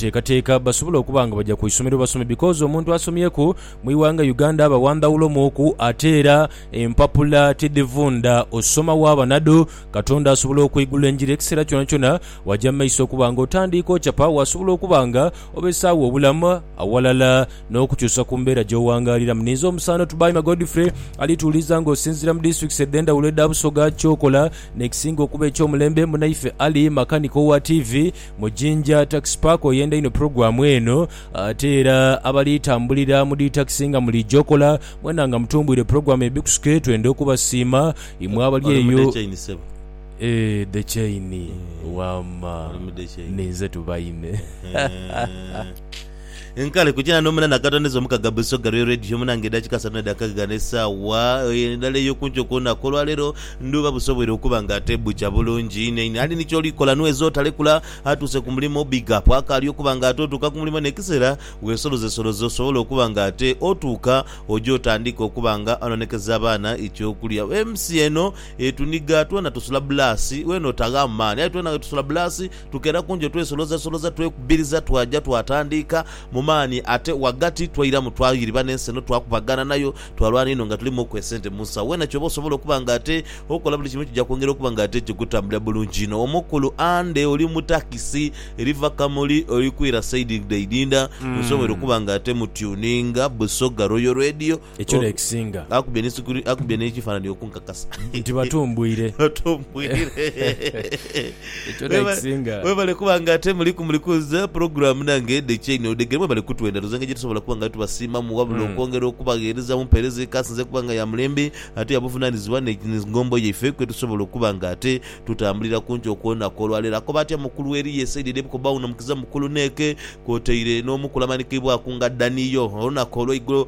batekateka basobola okuba nga baja kwisomero basome because omuntu asomyeku mwiwanga Uganda aba wandhawulo muku ate era empapula tidhivundha osoma waaba nadho katonda asobola okuigula enjiri ekisera kyonakyona waja mumaiso okuba nga otandiika ochapa wasobola okuba nga obesaawo obulamu awalala nokukyusa kumbera gyowangaliramu ninze omusaano Tubaime Godfrey alituwuliza nga osinzira mu districts edhendhawulo edha busoga kyokola nekisinga okuba ekyomulembe munaife Ali makanika owa TV Mu Jinja Tax Park oyenda inho pulogulaamu eno ate era abali tambulira mu dhi takisi nga muli Jokola mwena nga mutumbwire pulogulaamu ebikusuke twenda okubasiima imwe abali Oli mu eyo The Chain ssebo? Eeh The Chain Eeh, wama oli mu The Chain. ninze tubaine. Eeh. Nkale ku kinaana omuna na katono ezo mukaga buso ga lwe radio muna nga edakika asatu ne dakaga ne saawa endala eyo kunkyo ku lunaku olwa lero nduba busobwere okuba nga ate bukya bulungi inho inho ali ni kyoli kola nweza otalekula atuuse ku mulimo big up akaali okuba nga ate otuuka ku mulimo ne kisera wesoloze soloze osobole okuba nga ate otuuka oje otandike okuba nga ononekeza abaana ekyokulya MC eno etuniga twona tusula bulaasi wena otagha amaani aye twena wetusula bulaasi Tukera kunjo twesolozasoloza twekubbiriza twaja twatandiika mu maani ate ghagati twairamu twaghiriba n'ensi eno twakubagaana nayo twalwana inho nga tulimuku esente mu nsawo. Weena ky'oba osobola okuba nga ate okola buli kimu kija kwongera okuba nga ate kikutambulira bulungi inho. Omukulu Ande oli mu takisi riva Kamuli eri kwira saidi dha Idinda musobwere okuba nga ate mutuninga Busoga Royal Radio. Ekyo n'ekisinga. Akubye ni sikri, akubye n'ekifaananhi okunkakasa. Nti batumbwire. Batumbwire. Ekyo Weba- n'ekisinga. Webale kuba nga ate muliku muli kuwuliriza pulogulaamu nange The Chain Odege. Mwebale kutwenda. Tuze engeri gyetusobola okuba nga tubasiimamu wabula Mm. okwongera okubagheereza mu mpeereza ekasinze kuba nga ya mulembe ate ya buvunaanyizibwa ne- n'engombo yaife kwe tusobola okuba nga ate tutambulira ku nkyo okw'olunaku olwaleero. Akoba atya Mukulu Eriya esaidi ere bukobaawo n'omukiza mukulu n'eke kwotaire n'omu kulamanikibwaku nga Daniyo olunaku olw'eigulo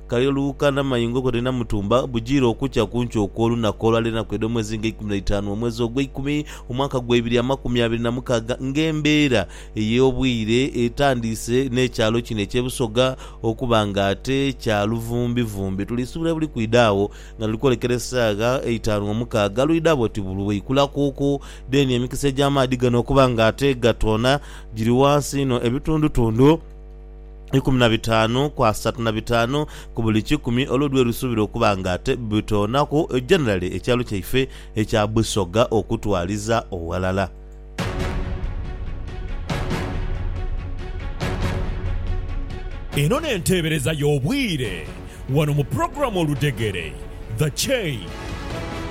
Kale Luka n'amayingo kwe talina mutumba, bujiire okukya ku nkyo okw'olunaku olwali enaku edh'omwezi nga eikumi na itaanu mu omwezi ogw'eikumi, mu mwaka gwa ibiri amakumi abiri na mukaaga, ng'embeera ey'obwire etandiise n'ekyalo kino eky'e Busoga okuba nga ate kya luvumbivumbi. Tuli suubira buli kwidha agho nga luli kwolekera esaagha eitaanu mu omukaaga, lwidha bwoti buli lw'eikulakuuku, dheeni emikisa egy'amaadhi gano okuba nga ate gatoona giri wansi inho ebitundutundu. ikumi na bitaanu ku asatu na bitaanu ku buli kikumi olwo lwerusuubirwa okuba nga ate bitoonhaku generally ekyalo kyaife ekya Busoga okutwaliza owalala. Eno n'enteebereza y'obwire wano mu pulogulaamu Oludhegere, The Chain.